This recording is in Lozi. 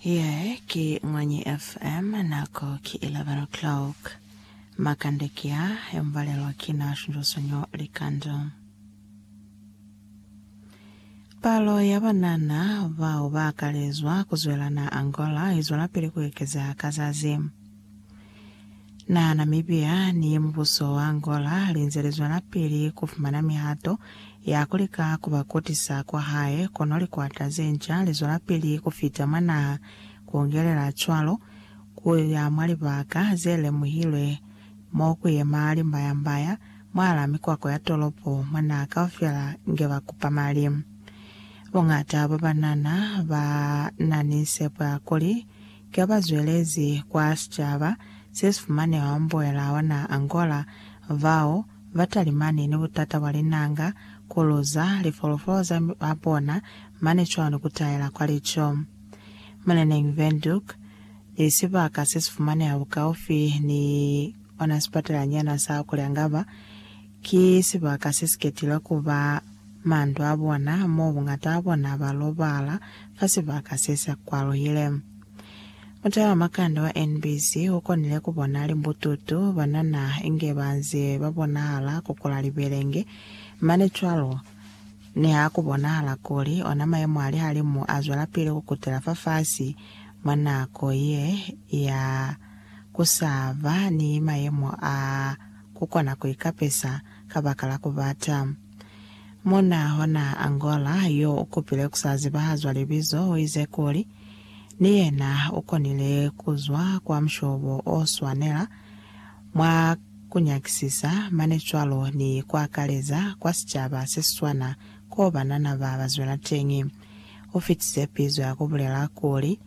Ye ki Mwanyi FM, nako ki 11 o'clock. Makande ki a yo mubalelwa ki na Shunjosonyo Likando. Palo ya banana bao ba akalezwa ku zwela na Angola i zwelapili ku ekeza ka zazi. Na Namibia ni mubuso wa Angola linze lizwelapili kufumana mihato ya kulika kuba kutisa kwahae, kono likwata zenca lizwelapili kufita mwa naha, kuongelela cwalo kuya mwa libaka zelemuhilwe mo kuyema limbayambaya mwala mikwako ya tolopo mwa naha kaufela inge bakupa mali. Bongata bwabanana banani sepo ya kuli Ka ba zwelezi kwa sicaba se si fumaneha mbuela wa naha Angola, bao ba talimani ni butata bwa linanga, ku luza lifolofolo za babona mane cwalo ni ku taela kwa lico. Muleneñi Windhoek ni sibaka se si fumaneha bukaufi ni ona sipatalanyana sa Coriangaba, Ki sibaka se si ketile ku ba mandu a bona, mo bungata a bona ba lobala fa sibaka se sa kwaluhile. Mutala makande wa NBC u konile ku bona limbututu, banana, inge ba nze ba bonahala ku kula libelenge. Mane cwalo, niha ku bonahala kuli ona mayemo a lihalimu a zwelapili ku kutela fafasi mwa nako ye ya ku sa ba ni mayemo a ku kona ku ikapesa kabakala ku bata. Muna hona Angola yo u kupile ku sa zibahazwa libizo u ize kuli, ni yena u konile ku zwa kwa mushobo o swanela, mwa ku nyakisisa mane cwalo ni ku akaleza kwa sicaba se si swana koo banana ba ba zwela teñi. U fitize pizo ya ku bulela kuli,